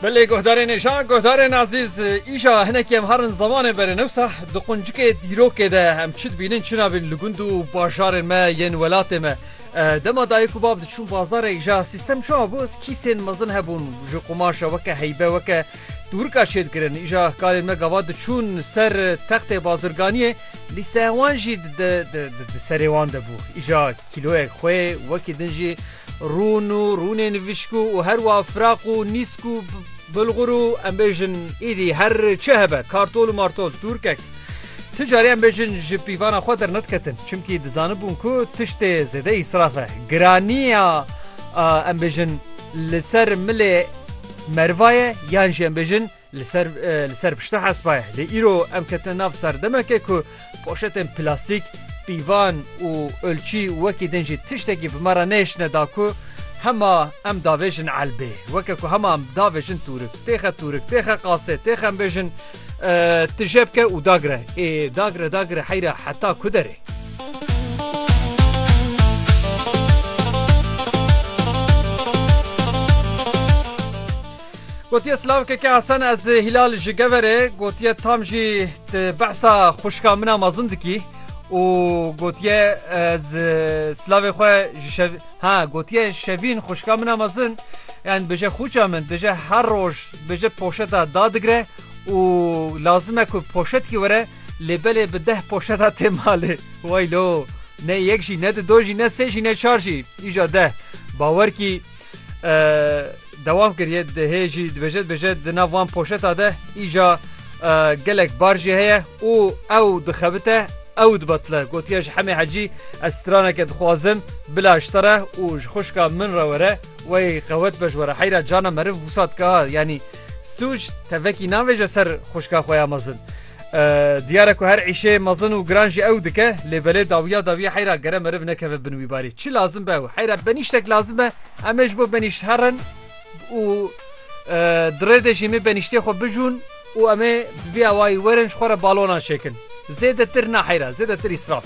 Belê guhdarên êşa, guhdarên ezîz, îşa hinekî em herin zemanên berê newsa di quncikê dîrokê de em çi dibînin çi nabînin li gund û bajarên me yên welatê me. Dema dayik û bab diçûn bazarê îşa sîstem çawa bû, kîsên mezin hebûn ji qumaşa weke heybe weke tûrika çêdikirin. Îşa kalên me gava diçûn ser textê bazirganiyê lîsteya wan jî di serê wan de bû. Îşa kîloyek xwê wekî din jî, Rûn û rûnê nivîşkû û her wa firaq û nîsk û bilxur û em bêjin îdî her çi hebe kartol û martol tûrkek. Ti carî em bêjin ji pîvana xwe dernediketin çimkî dizanibûn ku tiştê zêde îsraf e. Giranîya em bêjin li ser milê merva ye yan jî em bêjin Li ser li ser pişta hespa ye lê îro em ketine nav serdemeke ku poşetên plastîk, pîvan û ölçî wekî din jî tiştekî bi me re nêşine da ku hema em davêjin elbê. Weke ku hema em davêjin tûrik, têxe tûrik, têxe qasê, têxe em bêjin ti jê bike û dagire. Ê dagire dagire heyra heta ku derê. Gotiye silav keke Hesen ez Hilal ji Geverê gotiye tam jî ti behsa xuşka min a mezin dikî û gotiye ez silavê xwe ji ha gotiye şevîn xuşka min a mezin yan bije xûça min dije her roj bije poşeta dadigre û lazim e ku poşetkî were lê belê bi deh poşeta tê malê waylo ne yek jî ne di do jî ne sê jî ne çar jî îja deh bawer kî Dewam kiriye hê jî dibêje dibêje di nav van poşeta de îja gelek bar jî heye û ew dixebite ew dibatile gotiye ji hemê hecî ez straneke dixwazim bila ji te re û ji xuşka min re were wey qewet be ji were heyra cana meriv wisa dika yanî sûc tevekî navêje ser xuşka xwe ya mezin. Diyar e ku her îşê mezin û giran jî ew dike lê belê dawiya dawiya heyra gere meriv nekeve bin wî barî. Çi lazim be ew heyra benîştek lazim be em ê ji bo benîşt herin û di rê de jî em ê benîştê xwe bijûn û em ê bi vî awayî werin ji xwe re balonan çêkin. Zêdetir na heyra zêdetir îsraf.